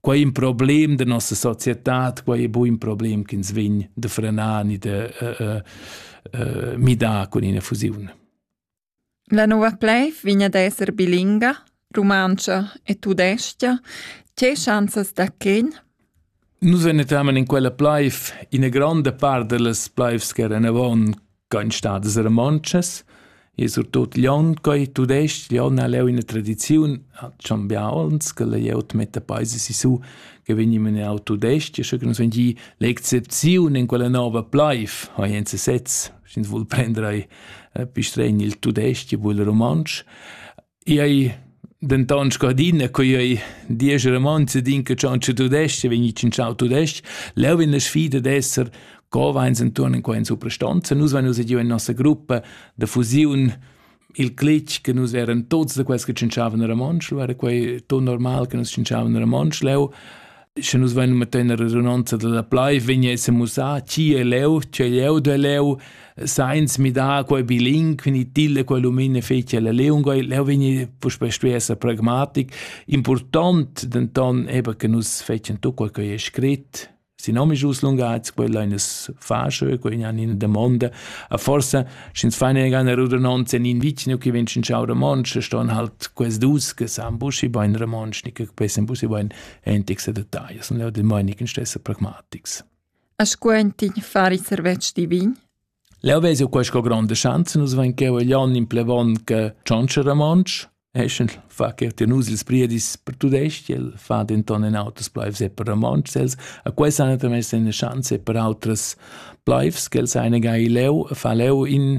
Quei è in problem da nossa società, quei è bu in problem che ins vegn da frenar ni da uh, uh, midar con ina fusiun. La nova pleiv vegn ad esser bilinga, rumantscha e tudestia. Tge chanzas da quin? Nus venetamen in quella pleiv, ina granda part delles pleivs che eran avon Kein stadas romontschas e surtut Glion, quei tudestg, Glion ha leu ina tradiziun, hat schon bia onns, che layout metta paese sisu, che vegnim in au tudestg, sche che nus vegni l'excepziun in quella nova plaif, ha jens sez, sch'ins vul prender ei pistregn il tudestg, vul romontsch. Ei denton sco adina co ei diesch romanzi din che tschantscha tudestg vegni tschintschau tudestg. Leu vegn la sfida d'esser co veins entuorn in quei suprastanza. Nus vein uss giu in nossa gruppa da fusiun il clic che nus eran tots da quels che tschinchavan a Romontsch, era quei ton normal che nus tschinchavan a Romontsch leu. sche nus vein metter in redunanza dalla plai, vegn esser mussà chi è leu, c'è leu de leu, sainz midar quei biling, quindi tilde quei lumine fece la leunga, leu vegni puspei stuessa pragmatic. Important denton eben che nus fecen tu quel che è scrit, si nomi jus lungaits, quella in es fasce, quella in in domanda, a forse, sch'ins fein eine Rudernonze in in vicino, che venschen ciao romansch, ston halt quels dus, che san buschi bein romansch, nicht besser buschi bein entics e detagls, sun leu demonic in stessa pragmatics. A scuentin fari servetsch divin? Leo vesi qua sco grande chance, nus vain cheu e glion in plevon che cionce ramonsch, eschen fa che ti nus ils priedis per tudest, el fa denton in auters plaivs e per ramonsch, els a quai san tamén sen chance per autras plaivs, che els ein gai leu, fa leu in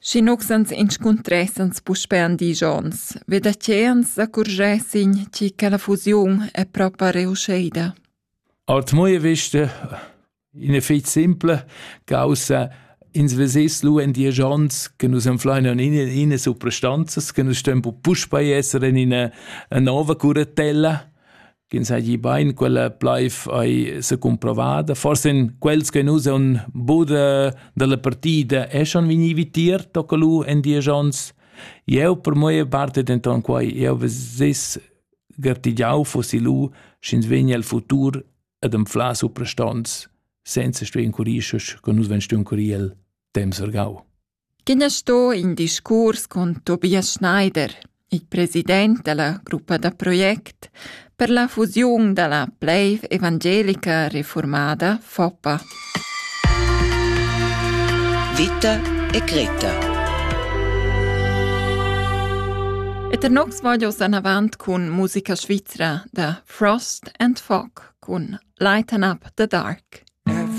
Sch'inux ans inscuntressans puspè in disch ons, ve da che ans accurschessin chi che la fusiun è propa reuschida. Als moie viste in effet simple, causa ins vesess lu en diesch ons che nus enfleinan in ina suprastanzas che nus stem puspei esser en ina nova curatella ch'ins hagi bein quella pleif ei secumprovada. Forse in quels che nus on bude dalla partida eschan vegni vitier toccalu en dies ons. Eu per moe parte denton quai, eu veses gartigiau fossi lu, sch'ins vegni al futur ad anflar suprastons, senza stuer incurir, che nus ven stuer incurir el temps ergau. Quin es sto in discuors cun Tobias Schneider, il president da la gruppa da project per la fusiun da la plaiv evangelica reformada Foppa. Vita e Greta. Et er nox voglio an avant cun musica svizra da Frost and Fog cun Lighten Up the Dark.